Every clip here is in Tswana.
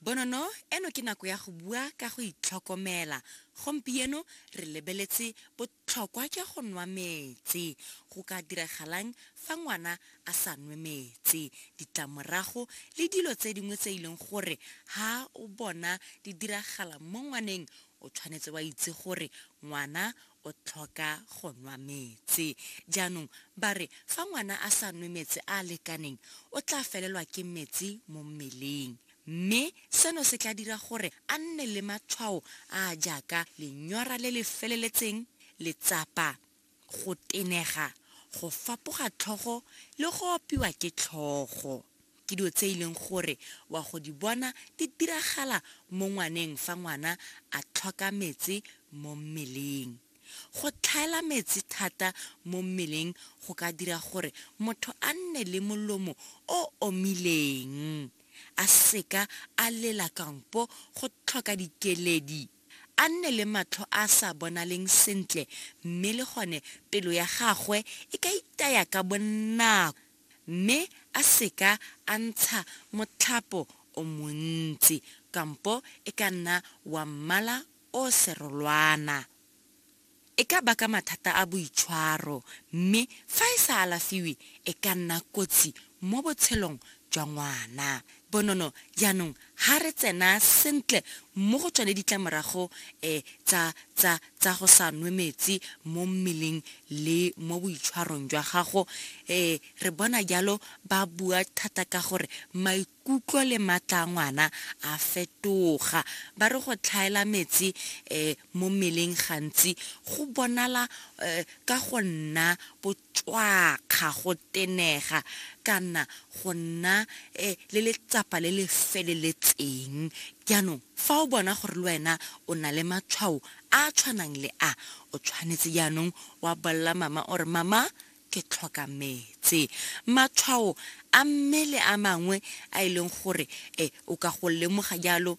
Bonono, eno ke nako ya go bua ka go itlhokomela. Gompieno re lebeletse botlhokwa jwa go nwa metsi. Go ka diragalang fa ngwana a sa nwe metsi? Ditlamorago le dilo tse dingwe tse e leng gore ha o bona di diragala mo ngwaneng, o tshwanetse wa itse gore ngwana o tlhoka go nwa metse. Jaanong ba re fa ngwana a sa nwe metse a a lekaneng, o tla felelwa ke metse mo mmeleng, mme seno se tla dira gore a nne le matshwao a a jaaka lenyora le le feleletseng, letsapa, go tenega, go fapoga tlhogo le go opiwa ke tlhogo. Ke dilo tse e leng gore wa go di bona di diragala mo ngwaneng fa ngwana a tlhoka metsi mo mmeleng. Go tlhaela metsi thata mo mmeleng go ka dira gore motho a nne le molomo o omileng, a seka a lela kampo go tlhoka dikeledi, a nne le matlho a a sa bonaleng sentle mme le gone pelo ya gagwe e ka itaya ka bonako. mme a se ka a ntsha motlhapo o montsi kampo e ka nna wa mmala o serolwana. E ka baka mathata a boitshwaro mme fa e sa alafiwe e ka nna kotsi mo botshelong jwa ngwana. Bonono, jaanong ha re tsena sentle mo go tsone ditlamorago e tsa, tsa, tsa go sa nwe metsi mo mmeleng le mo boitshwarong jwa gago, e re bona jalo ba bua thata ka gore maikutlo le maatla a ngwana a fetoga. Ba re go tlhaela metsi e mo mmeleng gantsi go bonala e ka go nna bo. cwakga, go tenega, kana go nna le letsapa le le feleletseng. Jaanong, fa o bona gore le wena o na le matshwao a a tshwanang le a, o tshwanetse jaanong wa bolelela mama o re, Mama, ke tlhoka metse. Matshwao a mmele a mangwe a e leng gore o ka go lemoga jalo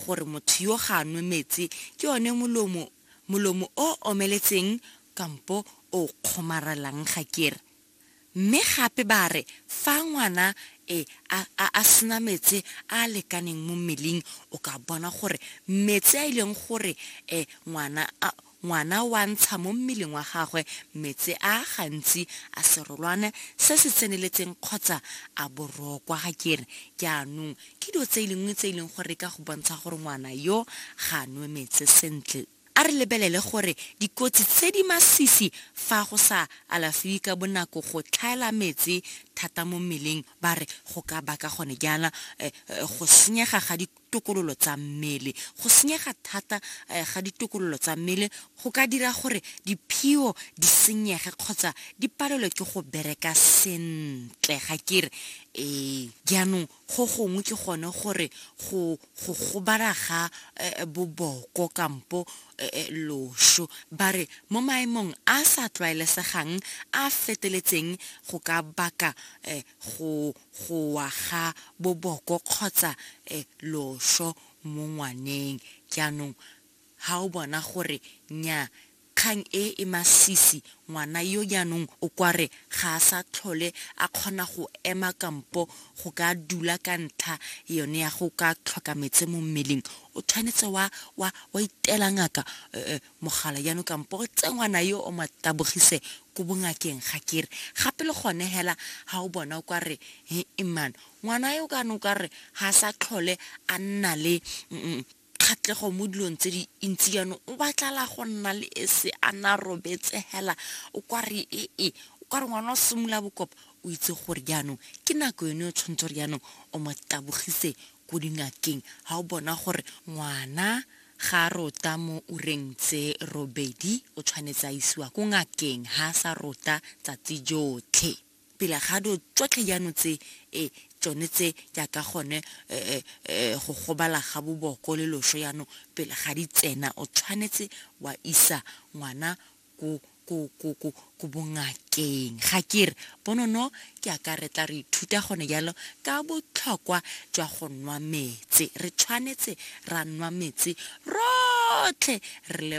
gore motho yo ga a nwe metse ke one molomo molomo o o omeletseng kampo o o kgomaralang ga ke re. Mme gape ba re fa ngwana e a a a sena metse a a lekaneng mo mmeleng o ka bona gore metse a e leng gore e ngwana a ngwana wa ntsha mo mmeleng wa gagwe metse a gantsi a serolwane se se tseneletseng kgotsa a borokwa ga ke re jaanong Ke dilo tse lengwe tse e leng gore ka go bontsha gore ngwana yo ga a nwe metse sentle. A re lebelele gore dikotsi tse di masisi fa go sa alafiwe ka bonako go tlhaela metse thata mo mmeleng ba re go ka baka gone jaana go senyega ga ditokololo tsa mmele. Go senyega thata ga ditokololo tsa mmele go ka dira gore diphio di senyege kgotsa di palelwe ke go bereka sentle ga kere ee jaanong Go gongwe ke gone gore go go gobala ga boboko kampo loso, ba re mo maemong a a sa tlwaelesegang a a feteletseng go ka baka go go wa ga boboko kgotsa loso mo ngwaneng. Jaanong ga o bona gore nnyaa Kgang e e masisi, ngwana yo jaanong o kware ga a sa tlhole a kgona go ema kampo go ka dula ka ntlha yone ya go ka tlhoka metse mo mmeleng. O tshwanetse wa wa wa itela ngaka mogala jaanong kampo o tseye ngwana yo o mo tabogise ko bongakeng ga ke re. Gape le gone hela ha o bona o kware he-e man, ngwana yo kaanong o kware ga a sa tlhole a nna le kgatlego mo dilong tse di ntsi jaanong o batlala go nna le e se a na robetse hela o kwa re e e o ka re ngwana o simolola bokopa o itse gore jaanong ke nako yone o tshwanetse gore jaanong o mo tabogise ko dingakeng ga o bona gore ngwana ga a rota mo ureng tse robedi o tshwanetse a isiwa ko ngakeng ga a sa rota tsatsi jotlhe pele ga do tsotlhe jano tse e tsone tse jaaka gone e, e, e, go gobala ga boboko le loso jano pele ga di tsena o tshwanetse wa isa ngwana ko ko ko ko ko bongakeng ga kere bonono ke a ka re tla re ithuta gone jalo ka botlhokwa jwa go nwa metse re tshwanetse ra nwa metse rotlhe re le